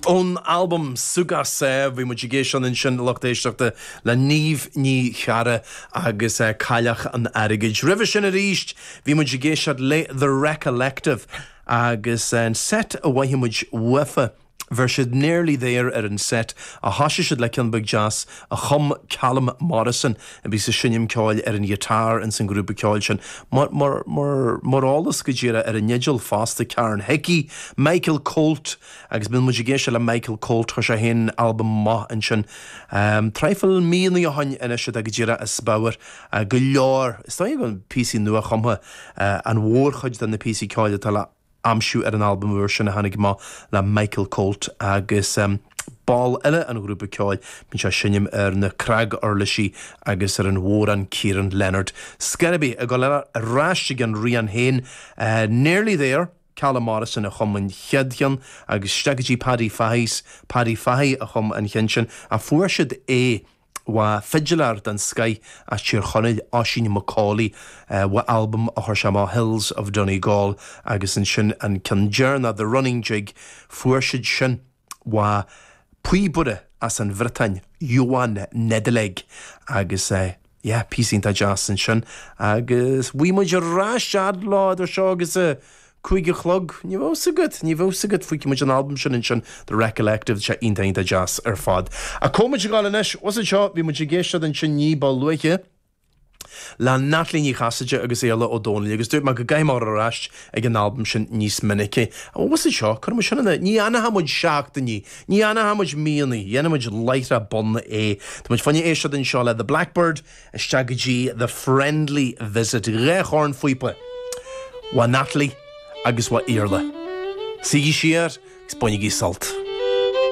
Ón albam Súgach Sámh, bhí muid ag éisteacht ansin lucht éisteachta le Niamh Ní Charra agus Cailleach an Airgid. Roimhe sin arís bhí muid ag éisteacht le The Recollective agus an seit a mhothaigh muid uafa, bheir siad Nearly There ar an seit a thosaigh siad le ceann beag deas a chum Calum Morrison a bíos ag seinm ceoil ar an ghiotár ins an grúpa ceoil sin, mar eolas go díreach ar an fhidil fosta, Karen Hickey, Michael Coult agus bíonn muid ag éisteacht le Michael Coult, chuir sé féin albam amach ansin traidhfil míonna ó shoin anois atá go díreach as pabhar go leor, is dóigh, píosaí nua-chumtha an mhórchuid de na píosaí ceoil atá le. aimsiú ar an albam úr sin a tháinig amach le Michael Coult agus ball eile an ghrúpa ceoil. Bíonn sé ag seinm ar na cnag-uirlisí agus ar an bhodhrán Kieran Leonard. Is cár bith ag dul ar ais ag an rian féin, Nearly There, Calum Morrison a chum an chéad cheann agus isteach go dtí Paddy Fahy's, Paddy Fahy a chum an cheann sin, a fuair siad é. Uaidh fidiléir den scoith as Tír Chonaill, Oisín McAuley, uaidh albam a chuir sé amach Hills of Donegal agus ansin an ceann deireanach The Running Jig, fuair siad sin uaidh píobaire as an Bhriotáin, Yoann Nedeleg, agus yeah, píosa iontach deas ansin agus beidh muid ag éisteacht leo idir seo agus Cúig a chlog, ní bheadh 'fhios agat, ní bheadh 'fhios agat, fuígfidh muid an albam sin ansin, The Recollective, sea, iontach, iontach deas ar fad. Ach caithfidh muid a ghabháil anois, 'bhfuil 'fhios agat seo, bhí muid ag éisteacht ansin ní ba luaithe le Natalie Ní Chasaide agus Iarla Ó Domhnaill agus dúirt mé go gcaithfidh mé a ghabháil ar ais ag an albam sin níos minice. Ach 'bhfuil 'fhios agat seo, cuirfidh muid sin in, ní dhéanfaidh muid seachtainí, ní dhéanfaidh muid míonna, déanfaidh muid láithreach bonn é. Tá muid fá choinne éisteacht anseo le The Blackbird, isteach go dtí The Friendly Visit, dhá chornphíopa, uaidh Natalie agus uaidh Iarla. Suígí siar agus bainigí sult.